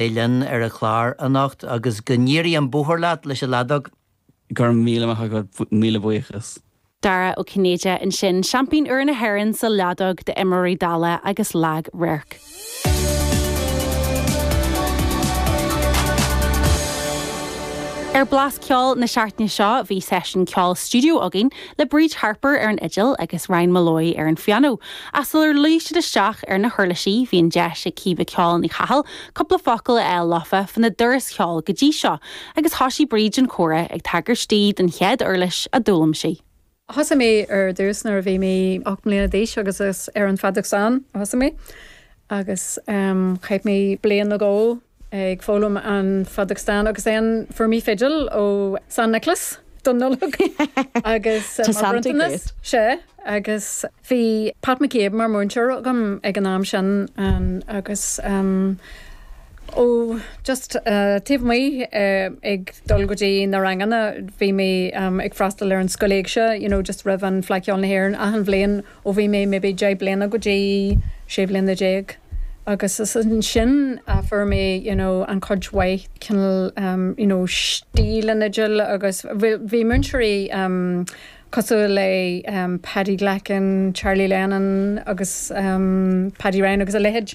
mé linn ar a clár anocht agus go n-éirí an bóthar leat leis an leadóg! Go raibh míle maith agat, míle buíochas. Dara Ó Cinnéide ansin, seaimpín úr na hÉireann sa leadóg d'imreoirí dalla agus lag radhairc. Ar Blas Ceoil na seachtaine seo bhí seisiún ceoil stiúideo againn le Bríd Harper ar an fhidil agus Ryan Molloy ar an phianó, ach sular luigh siad isteach ar na huirlisí bhí an deis ag Caoimhe 'Ceol' Ní Chathail cúpla focal a fháil leofa faoina dturas ceoil go dtí seo agus thosaigh Bríd an comhrá ag tagairt di don chéad uirlis a d'fhoghlaim sí. Thosaigh mé ar dtús nuair a bhí mé ocht mbliana d'aois agus is ar an fheadóg stáin a thosaigh mé agus chaith mé bliain ag gabháil ag foghlaim an fheadóg stáin agus ansin fuair mé fidil ó San Nioclás don Nollaig agus mar bhronntanas, sea, agus bhí Pat McCabe mar múinteoir agam ag an am sin agus ó just taobh amuigh ag dul go dtí na ranganna bhí mé ag freastal ar an Scoil Éigse, you know, just roimh an Fhleadh Cheoil na hÉireann achan bhliain Ó bhí mé maybe deich bliana go dtí sé bliana déag agus is ansin a fuair mé you know an chuid mhaith cineál em you know stíleanna fidil agus bhí múinteoirí em cosúil le em Paddy Glackin, Charlie Lennon agus em Paddy Ryan agus a leithéid.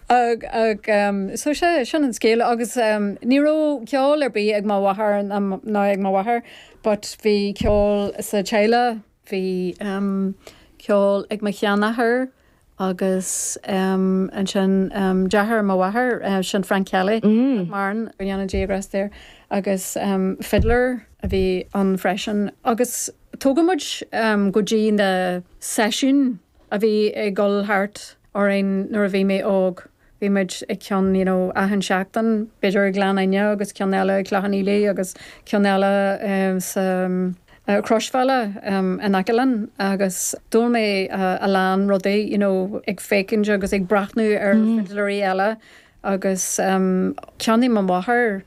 Ag, ag, so sea, sin an scéal agus ní raibh ceol ar bith ag mo mháthair ná ag m'athair but bhí ceol sa teaghlach, bhí ceol ag mo sheanathair agus ansin deartháir mo mháthair, sin Frank Kelly, nach maireann, go ndéana Dia grásta air, agus fiddler a bhí ann freisin agus tugadh muid go dtí na seisiúin a bhí ag dul thart. orainn nuair a bhí mé óg. Bhí muid ag ceann you know achan seachtain, b'fhéidir i Gleann Fhinne agus ceann eile i Cloich Cheann Fhaola agus ceann eile sa Chroisbhealach in aice linn agus d'fhoghlaim mé a lán rudaí you know ag féachaint agus ag breathnú ar fidléirí eile agus cheannaigh mo mháthair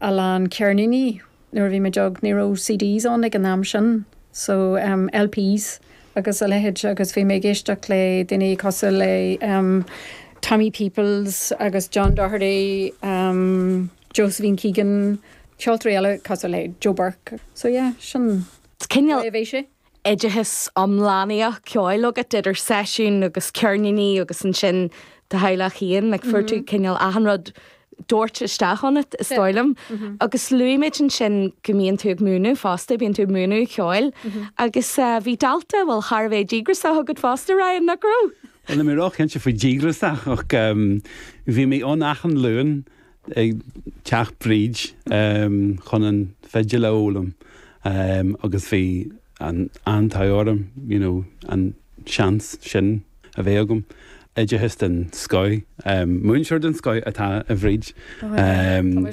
a lán ceirníní. Nuair a bhí muid óg ní raibh CDs ann ag an am sin so em LPs agus a leithéid agus bhí mé ag éisteacht le daoine cosúil le em Tommy Peoples agus John Doherty em Josephine Keegan, ceoltóirí eile cosúil le Joe Burke so yeah sin cineál, bhí sé. oideachas iomlánaíoch ceoil agat idir seisiúin agus ceirníní agus ansin do theaghlach féin, like fuair tú cineál achan rud dóirte isteach ionat is dóigh liom. Agus luaigh muid ansin go mbíonn tú ag múineadh fosta, bíonn tú ag múineadh ceoil agus bhí dalta, bhuel, thar a bheith díograsach agat fosta, Ryan, nach raibh? Bhuel, níl mé róchinnte faoi díograsach ach bhí mé ann achan Luan ag teach Bríd chun an fidil a fhoghlaim agus bhí an an-tóir orm you know an seans sin a bheith agam. Oideachas den scoth, múinteoir den scoth atá i mBríd. Tá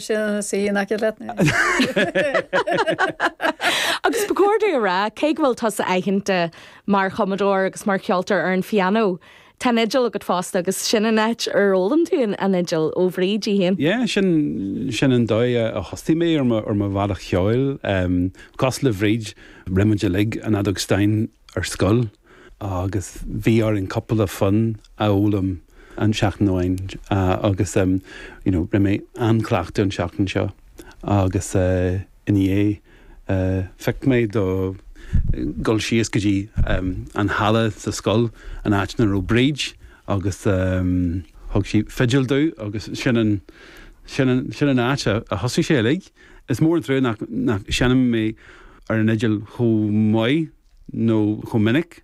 sí sin ina suí in aice leat anois. Agus ba chóir dom a rá, cé go bhfuil tusa aitheanta mar chumadóir agus mar cheoltóir ar an phianó, Tá an fhidil agat fosta agus sin an áit ar fhoghlaim tú an fhidil, ó Bhríd í féin? Yeah, sin, sin an dóigh a thosaigh mé ar mo, ar mo bhealach cheoil. Cosúil le Bríd, rinne muid uilig an fheadóg stáin ar scoil agus bhí orainn cúpla fonn a fhoghlaim an seachtain amháin agus you know, rinne mé an-chleachtadh an seachtain seo agus eh, I ndiaidh, piocadh mé le dhul síos go dtí an halla sa scoil, an áit ina raibh Bríd agus thug sí fidil domh agus sin an, sin an, sin an áit a thosaigh sé uilig. Is mór an trua nach, nach seinnim ar an fhidil chomh maith nó chomh minic